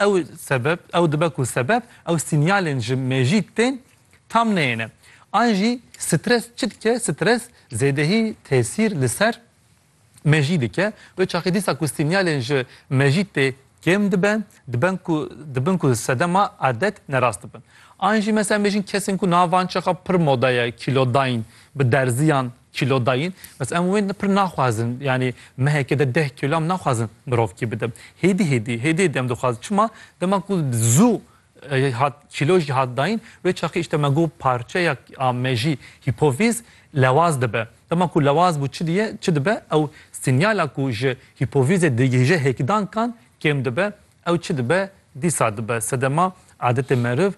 Ew sebeb, ew dibe ku sebeb ew sînyalên ji mejît tên tam neyêne. An jî stres çi dike? Stres zêdehî tesîr li ser mejî dike. Wê çaxê dîsa ku sînyalên ji mejît tê kêm dibe, diben ku dibin ku sedema adet nerast dibin. An jî mesela bêjin kesên ku navan çaxa pir moda ye, kîlodayîn, bi derziyan, Kîlo dayîn, bes em wê pir naxwazin. Yanî mehekê de deh kîlo em naxwazin mirovkî bide. Hêdî hêdî, hêdî hêdî em dixwazin. Çima? Dema ku zû hat kîlo jî hat dayîn, wê çaxê îşte me got parçeya mejî hîpovîz lewaz dibe. Dema ku lewaz bû çi diye, çi dibe? Ew sînyala ku ji hîpovîzê digihîje hêkdankan kêm dibe. Ew çi dibe, dîsa dibe sedema adetê meriv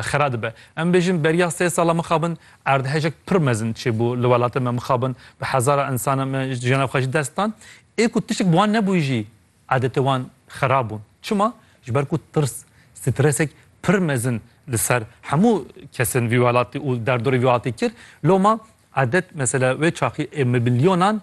xera dibe. Em bêjin beriya sê sala mixabin erdhejek pir mezin çêbû li welatê me mixabin bi hezara insana me jiyana xwe ji dest dan. Ê ku tiştek bi wan nebû jî adetê wan xera bûn. Çima? Ji ber ku tirs, stresek pir mezin li ser hemû kesên vî welatî û derdorê vî welatî kir. Loma adet mesela wê çaxî ê milyonan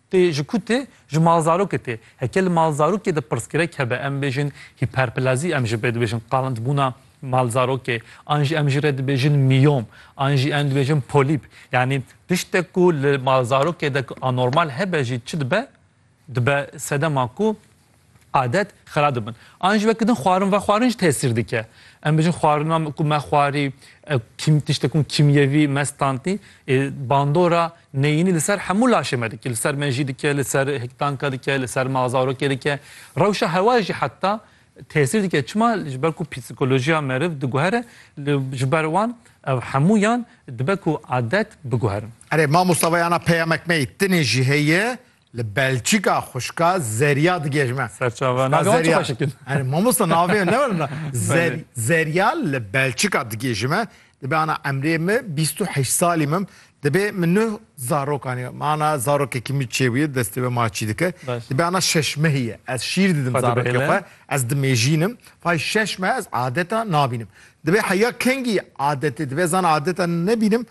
Tê ji ku tê? Ji malzarokê tê. Heke li malzarokê de pirsgirêk hebe em bêjin hîperplazî em ji pê dibêjin qalindbûna malzarokê an jî em jî rê dibêjin mîyom an jî em dibêjin polîp yanî tiştek ku li malzarokê de ku anormal hebe jî çi dibe? Dibe sedema ku adet xera dibin. An jî wekî din xwarin vexwarin jî tesîr dike. Em bijin xwarina ku me xwarî kîm tiştek ku kîmyevî me standî ê bandora neyînî li ser hemû laşê me dike. Li ser me jî dike, li ser hiktanka dike, li ser ma zarokê dike. Rewşa hewayê jî heta tesîr dike. Çima? Ji ber ku psîkolojiya meriv diguhere li ji ber wan ev hemûyan dibe ku adet biguherin. Erê mamosta veyana peyamek me yê tinê jî heye Li Belçîka xwişka Zerya digihêjme. Serçava na wan çi xweşik in. Erê mamosta navê ne were na. Zer Zerya li Belçîka digihêjime. Dibe ana emrê min bîst û heşt salî min. Dibe min nuh zarokan heye. Ma ana zarokekî min çêbûye destê wê ma çî dike. Dibe ana şeş mehî ye. Ez şîr didim zarokê xwe. Ez dimêjînim. Fay şeş meh ez adeta nabînim. Dibe heya kengî adetê dibe ez ana adeta nebînim.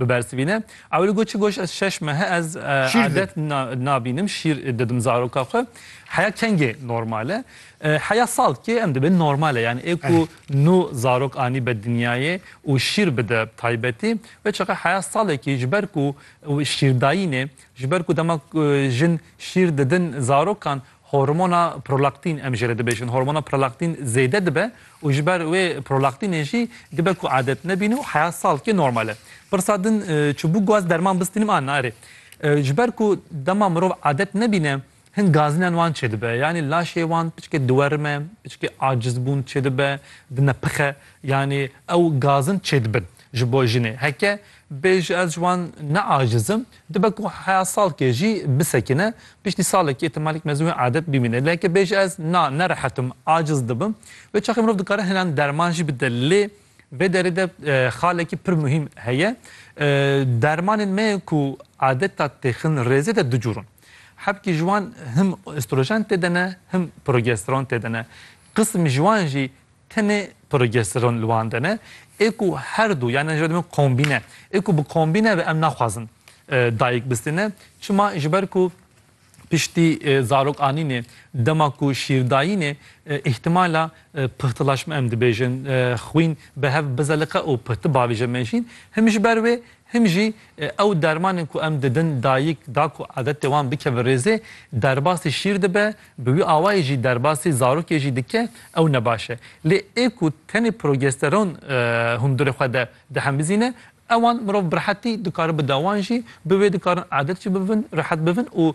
Bibersivîne. Ew li goçî goş ez şeş mehe ez adet nabînim şîr didim zaroka xwe. Heya kengê normal e. Heya sal kê em dibin normal e. Yani ê ku nû zarok anî be dinyayê û şîr bide bi taybetî ve çaxe heya salekî ji ber ku şîrdayînê ji ber ku dema jin şîr didin zarokan Hormona prolaktîn em jê re dibêjin hormona prolaktîn zêde dibe û ji ber wê prolaktînê jî dibe ku adet nebîne û heya salkê normal e. Pirsa din çibû ku ez derman bistînim an na erê. Ji ber ku dema mirov adet nebîne hin gazînan wan çêdibe yanî laşê wan piçikê diwerime, piçikê acizbûn çêdibe, dinepixe yanî ew gazin çêdibin ji bo jinê. Heke bê ji ez ji wan ne acizim Dibe ku heya salkê jî bisekine, piştî salekî îhtimalek mezin wê adet bimîne. Lê heke bêje ez na, nerehetim, aciz dibim. Vê çaxê mirov dikare hinan derman jî bide. Lê vê derê de xalekî pir muhîm heye. Dermanên me yên ku adeta têxin rêzê de du cûr in. Hebkî ji wan him estrojen tê de ne, him progesteron tê de ne. Qism ji wan jî Tenê progesteron li wan de ne, ê ku her du yan ji ber min kombîne, ê ku bi kombîne ve em naxwazin dayik bistîne, çima ji ber ku piştî zarok anînê, dema ku şîr dayînê îhtimala pixtilaşma em dibêjin xwîn bi hev bizeliqe û pihtibavêje mejîn, him ji ber wê him jî ew dermanên ku em didin dayik da ku adetê wan bike bi rêzê derbasî şîr dibe Bi wî awayî jî derbasî zarokê jî dike ew ne baş e. Lê ê ku tenê progesteron hundirê xwe de dihembizîne, ewan mirov bi rehetî dikare bide wan jî bi wê dikarin adet jî bibin, rehet bibin û